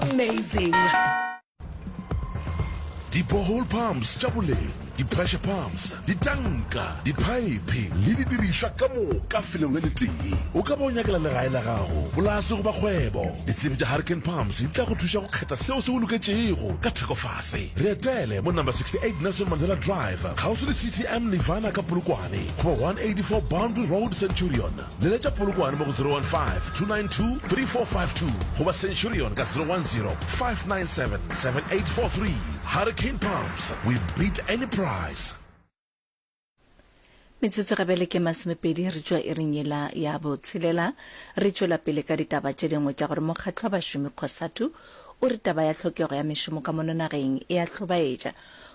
amazing di-borehole pumps tša boleng di-pressure pumps ditanka diphaephe le didirišwa ka moka felong le letee o ka ba o nyakela legae la gago polase goba kgwebo ditsebi tša hurricane pumps di tla go thuša go kgetha seo se go loketšego ka thekofase re etele mo number 68 nelson mandela drive kgauswi le ctm nirvana ka polokwane goba 184 boundary road centurion Leletša Polokwane mo go 015-292-3452 goba Centurion ka 010-597-7843. Hurricane Pumps, we beat any price! Metsotso ga bjale ke masomepedi re tšwa iring yela ya botshelela. Re tšwela pele ka ditaba tše dingwe tša gore mokgatlo wa bašomi Cosatu o re taba ya tlhokego ya mešomo ka mono nageng e a hlobaetša.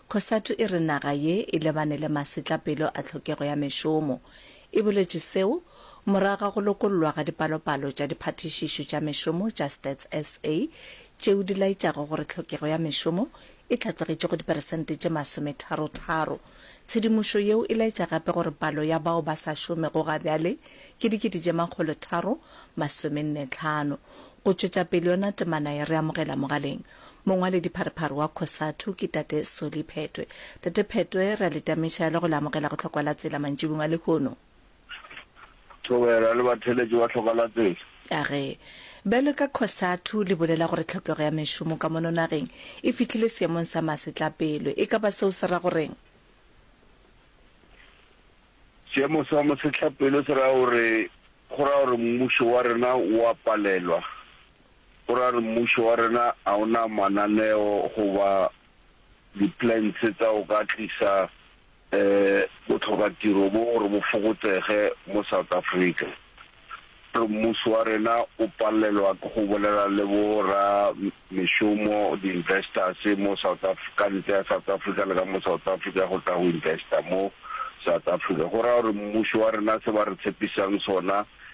Cosatu e re naga ye e lebane le masetlapelo a tlhokego ya mešomo. E boletše seo morago ga go lokollwa ga dipalopalo tša diphathišišo tša mešomo tša Stats SA tšeo di laetšago gore tlhokego ya mešomo e hlatlogetše go diperesente tše masometharo-tharo. Tshedimošo yeo e laetša gape gore palo ya bao ba sa šomego ga bjale ke dikete tše makgolo tharo masomenne-tlhano. Go tšwetša pele yona temana ye re amogela mogaleng Mongwaledipharephare wa Cosatu ke Tate Solly Phetwe. Tate Phetwe, re a le tameša le go le amogela go Tlhokwa la Tsela mantšibung a lehono. Thobela le batheeletši ba Tlhokwa la Tsela. A re, bjalo ka Cosatu le bolela gore tlhokego ya mešomo ka mono nageng e fihlile seemong sa masetlapelo. E ka ba seo se ra go reng? Seemo sa masetlapelo se ra gore, go ra gore mmušo wa rena o a palelwa O ra re mmušo wa rena a o na mananeo goba di-plans tsa go ka tlisa botlhokatiro bo gore bo fokotsege mo South Africa. O re mmušo wa rena o palelwa ke go bolela le bo ra mešomo, di-investors, mo South ka ntle ya South Africa le ka mo South Africa go tla go investa mo South Africa. Go raya gore mmušo wa rena se ba re tshepisang sona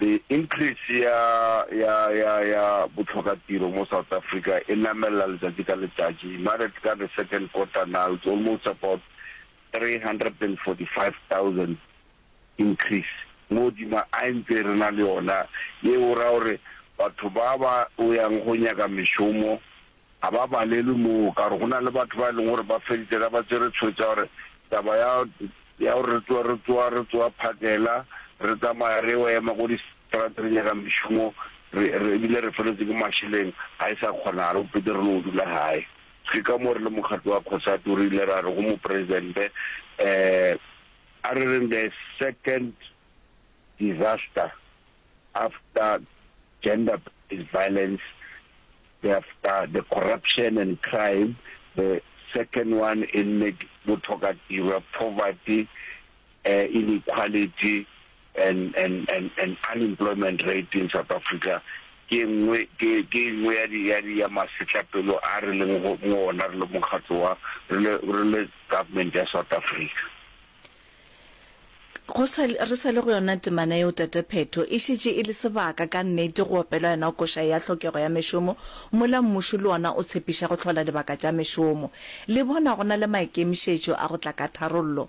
The increase ya ya ya ya botlhokatiro mo South Africa e namelela letsatsi ka letsatsi. Married ka the second quarter now it's almost about 345,000 increase mo godima a ntse re na le yona ye o ra gore batho ba ba o yang go nyaka mešomo Ga ba balelwe moo, ka gore go na le batho ba e leng gore ba feditše ka ba tswere tshwetso ya gore taba ya ya gore re tsoa re tsoa re tsoa phakela re tsamaya re yo ema ko distrata re nyaka mešomo re re ebile re feletswe ke mašeleng ga e sa kgonagala go pete re no dula gae. Ke ka moo re le mokgatlo wa Cosatu re ile ra re go Mopresidente um a re reng the second disaster after gender based violence the after the corruption and crime, the second one e nne bothokatirwa, poverty, eh, inequality and, and, and, and unemployment rate in South Africa ke engwe ke ke engwe ya di ya di ya masetlapelo a re leng go mo ona re le mokgatlo wa re le re le government ya South Africa. Go sa, re sa le go yona temana yeo, Tate Phetho. E šetše e le sebaka, ka nnete, go opelwa yona koša ya tlhokego ya mešomo, mola mmušo le ona o tshepiša go hlola dibaka tša mešomo. Le bona go na le maikemišetšo a go tla ka tharollo.